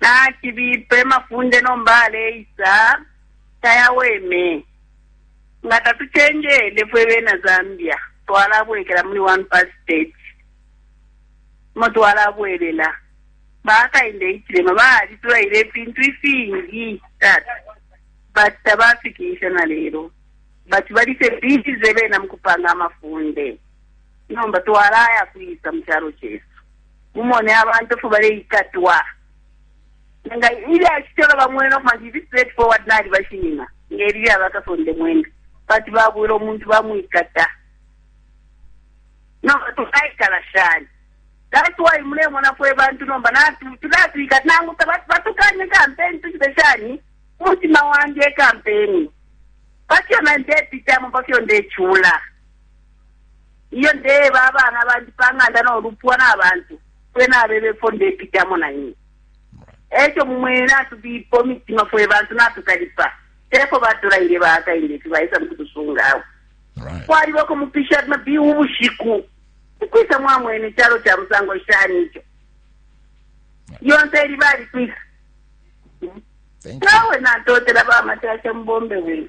nacibipe mafunde nomba aleisa tayaweme nga tatucenjele fwe bena zambia twalabwekela muli one pass state mo twalabwelela bakainde ichilema balitulaile ifintu ifingi tata but tabafikisha na lero but balise bize bena mukupanga amafunde nomba twalaya kwisa mu calo cesu Mumone abantu ifyo baleikatwa. Nga ilya shitolo bamwena ukuma nti ifi straight forward nali bashinina nge lilya ba kasonde mwenda. Bati babwela umuntu bamwikata. Nomba tukaikala shani? That's why mulemona fwe bantu nomba natu tulatwikata nangu batukanye kampeni tuchite shani umutima wandi e kampeni. Pafyo na ndepitamo pafyo ndechula. Ilyo ndeeba abana bandi pa ng'anda no lupwa na bantu, fwe nabeba ifyo ndepitamo, na imwe e co mumwene. Natubipa imitima, fwe bantu natukalipa. Te fwe batulaile bakainde ifi baisa mu kutusunga awe. Kwaliba uko mupisha mabiu ubushiku. Ukwisa mwamwene icalo ca musango shani ico? Lyonse ili balikwisa. Nawe natotela bamatasha mubombe wenu.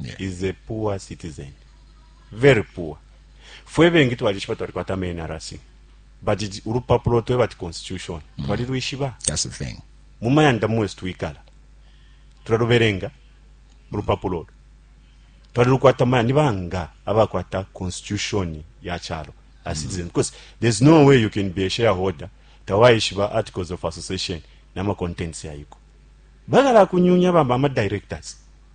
yeah. is a poor citizen very poor fwe bengi twalishiba twalikwata menrc but ulupapulo tweba ti constitution mm. twalilwishiba mu mayanda mwesu twikala tulalubelenga ulupapulo olo twalilukwata maya ni banga abakwata constitution ya chalo a citizen mm. because there's no way you can be a shareholder tawaishiba articles of association nama contents yayiko bagala kunyunya bamba ama directors